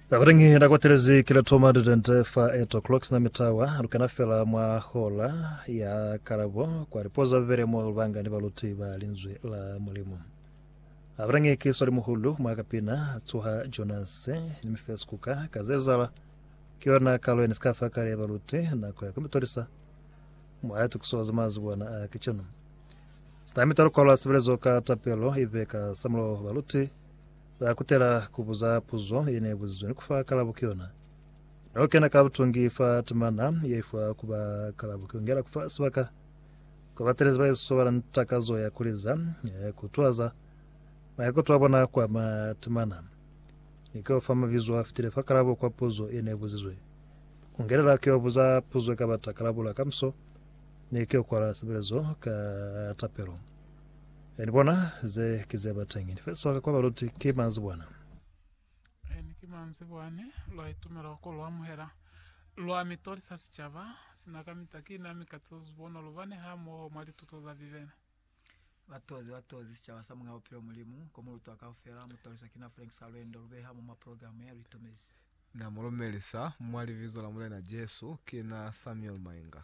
Bakuteñi na kwatelezi kila thoma didente fa 8 o'clock sina mitawa lukena fela mwa hola ya kalabo kwa lipoza bibele mo lubanga ni baluti ba linzwi la Mulimu. Abateñi ki swali muhulu mwa kapina tsuha Jonas ni mifes kuka ka zezala ki yona kalo ya nisikafa kale ya baluti nako ya kumitolisa mwa tukiso za mazi bona a kichino. Sina mitalo kwala sebelezo ka tapelo ibe ka samulo baluti Ba kutela ku buza puzo ye ne buzizwe ni ku fa kalabo ki yona. Ne u kena ka butungi fa timana ye ifuwa ku ba kalabo ki ku ngela ku fa sibaka kwa batelezi ba Yesu ba na ni takazo ya ku liza, ya ku tuhaza maikuto a bona kwa ma timana, ni k'o fa mabizo a fitile fa kalabo kwa puzo ye ne buzizwe. Ku ngelela k'o buza puzo i ka bata kalabo la kamiso ni k'o kwala sebelezo ka tapelo. E ni bona ze ki ze ba teñi. Ni fesiwa ka kwa baluti ki manzibwana. E ni ki manzibwa ne lwa itumela ko lu amuhela. Lwa mi tolisa sicaba sina kamita ki na mi katiza zubono lu bane hamoho mwa lituto za Bibele. Ba tozi ba tozi sicaba sa Muñ'a Bupilo Mulimu, ko mu lutwa kaufela. Mu toliswa ki na Frank sa Lwendo lu beha mo mwa programa ya lu itumezi. Na mu lumelisa mwa Libizo la Mulena Jesu, ki na Samuel Mainga.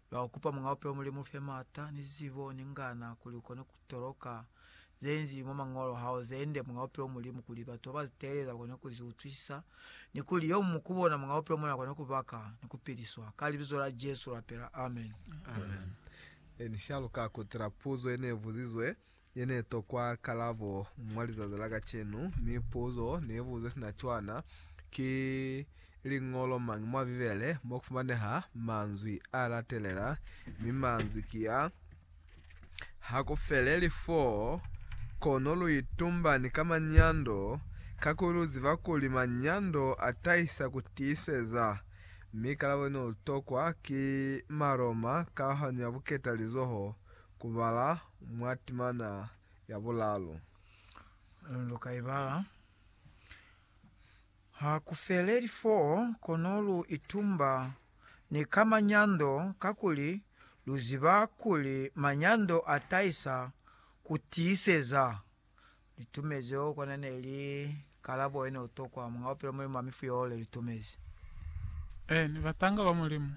Lwa ku kupa Muñ'a Bupilo Mulimu ufe m'ata, ni zibo, ni ngana, kuli ukone ku toloka ze nzi mwa Mañolo hao ze nde, Muñ'a Bupilo Mulimu, kuli batu ba ba zi teeleza bakone ku zi utwisisa, ni kuli yo mumu ku bona Muñ'a Bupilo mona akone ku baka ni ku piliswa. Ka Libizo la Jesu lapela. Amen. Amen. Ni shaluka ku tila puzo ye ne buzizwe Ye ne tokwa kalabo mwa lizazi la kacenu, mi puzo ne buze sina cwana, Ki liñolo mañi mwa Bibele mo ku fumaneha manzwi a latelela? Mi manzwi ki a, Ha ku feleli f'o, kono lu itumbani ka manyando, kakuli lu ziba kuli manyando a tahisa ku tiiseza. Mi kalabo ye ne lu tokwa ki Maroma, kahwanyo ya buketalizoho. ku bala mwa timana ya bulalu. Lu ka i bala. Ha ku feleli foo, kono lu itumba ni ka manyando, kakuli lu ziba kuli manyando a tahisa ku tiiseza. Li tumezi oh kona ne li kalabo ye ne u tokwa Mwanga wa Bupilo Mulimu wa Mifu yoo le li tumezi. Ee, ni batanga ba Mulimu.